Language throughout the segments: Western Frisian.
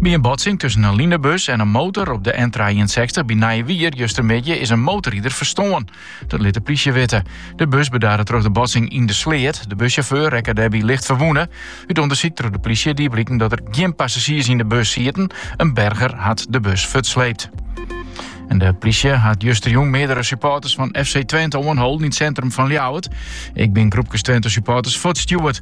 By in botsing tusken in linebus en in motor op de N63 by Nijewier justermiddei is in motorrider ferstoarn. Dat lit de plysje witte. De bus bedarre troch de botsing yn de sleat. De bussjauffeur rekke dêrby licht ferwûne. Ut ûndersyk troch de plysje die bliken dat der gjin passazjiers yn de bus sieten. In berger hat de bus fuortsleept. En de plysje hat justerjûn meardere supporters fan FC Twente oanholden yn it sintrum fan Ljouwert. Ek binne groepkes Twente supporters fuortstjoerd.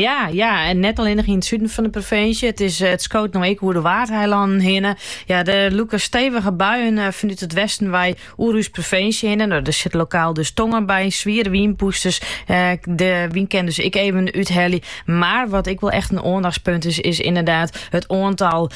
Ja, ja, en net allinnich yn it suden fan de provinsje. It, is, eh, it skoot no ek oer de Waadeilannen hinne. Ja, der lûke stevige buien eh, fanút it westen wei oer ús provinsje hinne. No, der sit lokaal dus tonger by, zwiere wynpûsters. Eh, de wyn kin dus ek even úthelje. Mar wat ek wol echt in oandachtspunt is, is inderdaad it oantal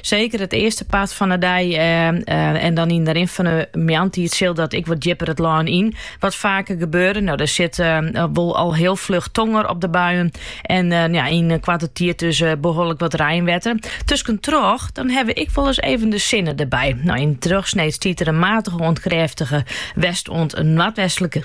Seker it earste part fan 'e dei en dan yn de rin fan 'e moarntiid sil dat ek wat djipper it lân yn wat faker gebeure, no der sit wol al hiel fluch tonger op de buien en ja, yn koarte tiid dus behoorlik wat reinwetter. Tuskentroch, dan ha we ek wol ris even de sinne derby. No yn de trochsneed stiet der in matige oant krêftige west oant noardwestlike